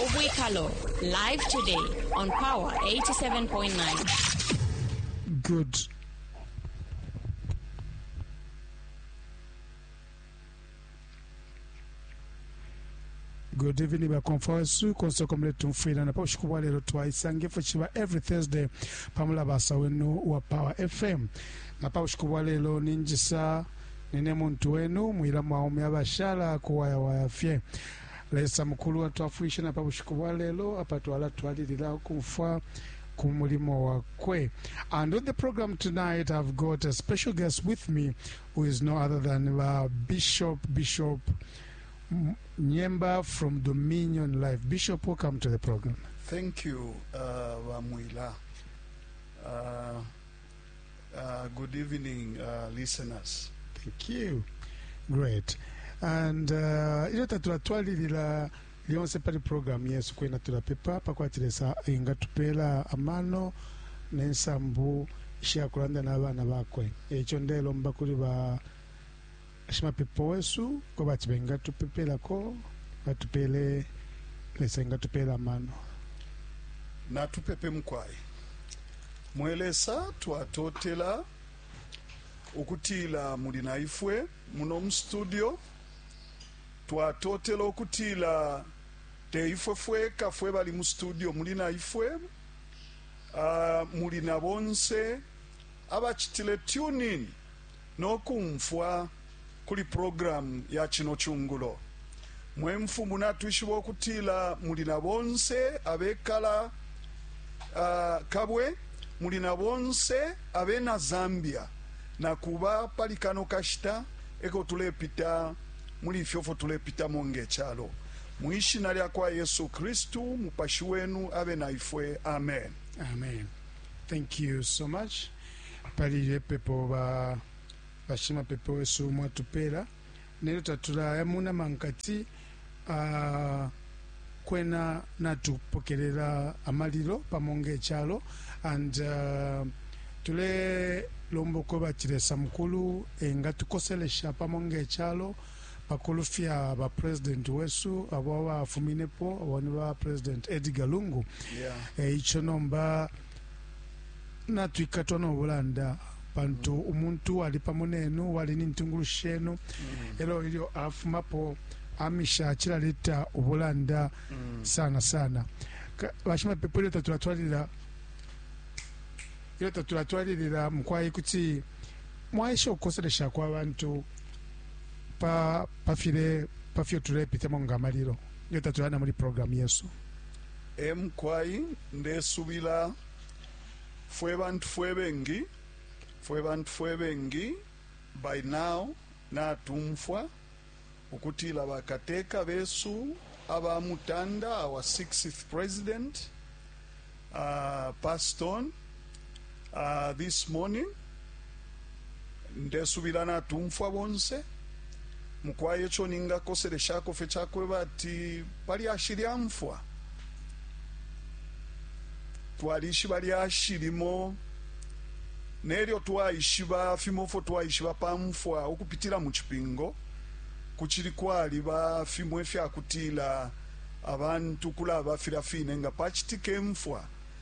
Ubwikalo live today on Power 87.9. Good. good evening bakomfa wesu konse uko muletumfwila na paushiku bwa lelo twaisanga ifwe ciba every thursday pamulabasa wenu wa power fm na paushiku bwa lelo ninjisa Nine muntu wenu, mwila mwaume abashala kuwayawaya fye. Lesa mukulu atwafwilishe na pa bushiku bwa lelo apa twalatwalilila ukumfwa ku mulimo wakwe. And on the program tonight I've got a special guest with me who is no other than ba Bishop Bishop M- Nyemba from Dominion Life. Bishop, welcome to the program. Thank you, uh, Wamwila. Uh, Uh, good evening, uh, listeners. Thank you. Great. And uh, ilyo tatulatwalilila lyonse pali programu yesu kwena tulapepa pakwati lesa ingatupeela amano nensambu ishakulanda n'abaana bakwe ekyo ndelomba kuli ba Shimapepo wesu kwebati bengatupepelako, batupele Lesa engatupela amano. Natupepe, mukwai. Mwe Lesa, twatotela ukutila muli na ifwe muno mu studio. Twatotela ukutila te ifwe fweka fwe bali mu studio, muli na ifwe. Uh, muli na bonse abachitile tune in no kumfwa kuli programu ya cino cungulo. Mwe Mfumu, natwishiba ukutila muli na bonse abekala uh, Kabwe, muli na bonse abena Zambia. Na kuba pali kano kashita eko tulepita muli ifyo fyo tulepitamo nge calo. Mu ishina lya kwa Yesu Kristu, mupashi wenu abe na ifwe. Amen. Amen. Thank you so much. pali ilyo ipepo ba bashimapepo wesu mwatupeela nelyo tatulaya mu nama nkati ah, kwena natupokelela amalilo pamo ng'ecalo and ah, tulelomba uko bati lesa mukulu engatukoselesha pamo ng'ecalo pakulufya bapresidenti wesu abo abafuminepo abo ni bapresidenti edgar lungu Yeah. e, ico nomba Natwikatwa no bulanda pantu mm. umuntu uwali pamo nenu uwali ni ntungulushi shenu mm. elo ilyo afumapo amisha cilaleta ubulanda mm. sana sana bashimapepo ilyo tatulatwalilila ilyo tatulatwalilila mukwai kuti mwaisha ukukoselesha kwa bantu pa pafile pafyo tulepitamo nga malilo ilyo tatulana muli programu yesu Ee mukwai, ndesubila fwe bantu fwe bengi, fwe bantu fwe bengi by now natumfwa ukutila ba kateka besu aba mutanda, our sixth president, uh, passed on. Uh, this morning ndesubila natumfwa bonse mukwaye ico ningakoseleshako fe cakweba ati palyashi lya mfwa twalishiba lyashi limo nelyo twaishiba fimo fo twaishiba pa mfwa ukupitila mu cipingo kucili kwaliba fimo ifyakutila abantu kulaba filya fine nga pacitike mfwa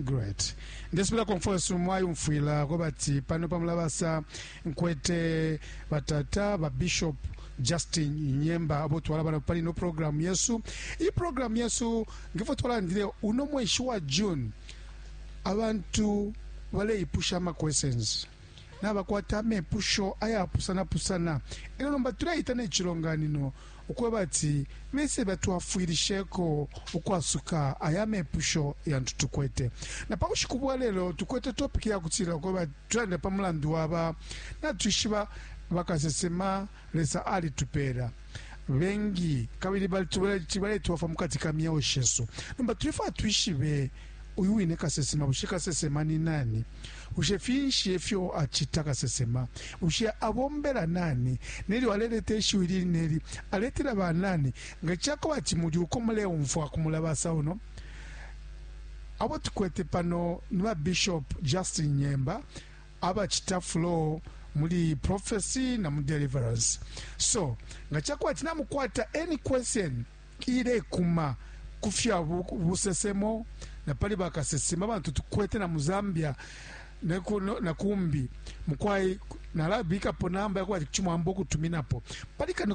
great ndesubila konfosu mwayumfwila ko bati pano pamulabasa nkwete batata babishop justin nyemba abo twala bana pali no programu yesu iyi programu yesu ngefo twalandile uno mweshi wa june abantu baleipusha ama questions nabakwata amepusho ayapusana pusana elyo nomba tuleita ne cilonganino ukwebati bese batwafwilisheko ukwasuka aya amepusho yantu tukwete. Na pa bushiku bwa lelo tukwete topiki yakutila ukwebati tulande pa mulandu waba natwishiba bakasesema Lesa alitupeela. Bengi kabili baletwafwa mu kati ka myeo shesu. Nomba tulefwaya twishibe uyu wine kasesema. Bushe kasesema ni nani? Bushe finshi e fyo acita? Kasesema, bushe abombela nani? Nelyo aleleta ishiwi ili ne li, aletela ba nani? Nga ca kwebati muli uko muleumfwa ku mulabasa uno, abo tukwete pano ni ba Bishop Justin Nyemba, abacita flow muli prophecy na mu deliverance so nga chakwati na mukwata any question ilekuma kufya busesemo na pali bakasesema bantu tukwete na mu Zambia neku no, na kumbi mukwai nalabika po namba yakwati chimwambo kutuminapo pali kano